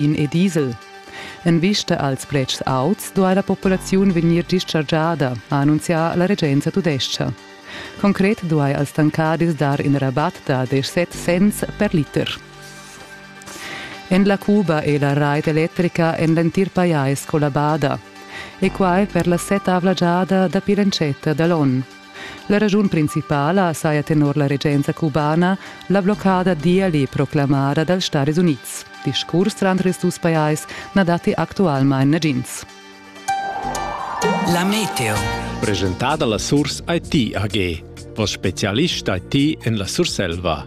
in e diesel. En vista als pretschs auts duai la populaziun vegnir dischargiada, ha annunzià la regenza tudescha. Concret duai als tancadis dar in rabat da 17 cents per liter. En la Cuba è la rait electrica en l'entir pajais collabada e quai per la setavla giada dapi l'entschatta da l'onn. La raschun principala saja tenor la regenza cubana la bloccada d'Iali proclamada dals Stadis Unids. Discurs tranter ils dus pajais na datti actualmain nagins. La meteo. Presentada la Surs IT AG, vos specialist IT en la Surselva.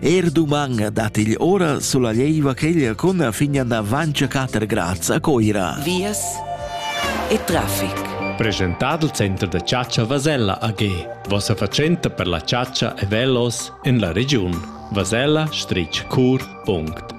Er duman dat igl ora sulla leiva cheglia cun fin da Vancia 4 grads a Coira. Vias e traffic. Presentado il Center da Ciaccia Vasella AG, vossa fatschenta per la ciaccia e velos en la regiun. Vasella-cur.it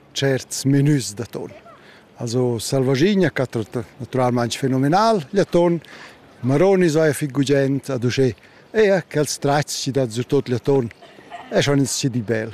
certs menus d'atun. Also selvaschigna catro naturalmaing fenomenal gl'atun. Maronis vaia fich gugent ad uschè. Eir quels tratgs chi dat surtot gl'atun eschan ins di bel.